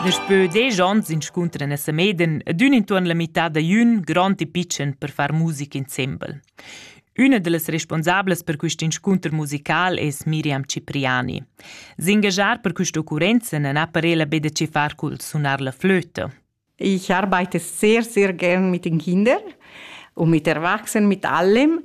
Daspö desch ons inscuntran a Sameden ed ün intuorn la mità da jün grond e pitschen per far musica insembel. Üna da las responsablas per quist inscunter musical es Miriam Cipriani. S'ingagiar per quista occurrenza non ha parela be da che far cul sunar la flöta. Ich arbeite sehr, sehr gern mit den Kindern und mit Erwachsenen, mit allem,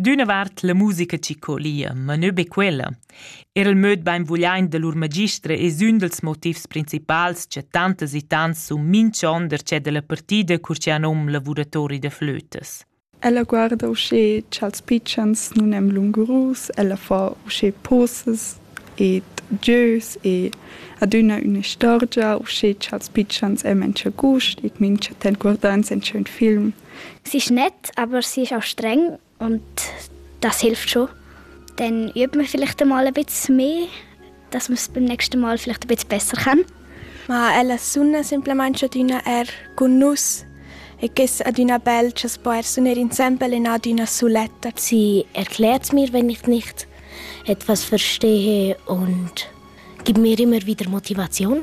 D'üna vart la musica chi colia, ma nö be quella. Er il möd bainvugliaint da lur magistra es ün dals motivs principals cha tantas e tants sun minchon darcheu da la partida cur chi han nom lavuratori da flötas. Ella guarda uschè cha'ls pitschens nun èn lungurus, ella fa uschè posas ed gieus e adüna üna istorgia uschè cha'ls pitschens èn main cha gust e mincha temp guardans in ün film. Sich nett, aber sie ist auch streng und das hilft schon. Dann übt man vielleicht einmal ein bisschen mehr, dass man es beim nächsten Mal vielleicht ein bisschen besser kann. Ma ella sunna semplamain adüna er cun nus e che es adüna bel cha s'po er suner insembel in adüna suletta. Sie erklärt mir, wenn ich nicht etwas verstehe und gibt mir immer wieder Motivation.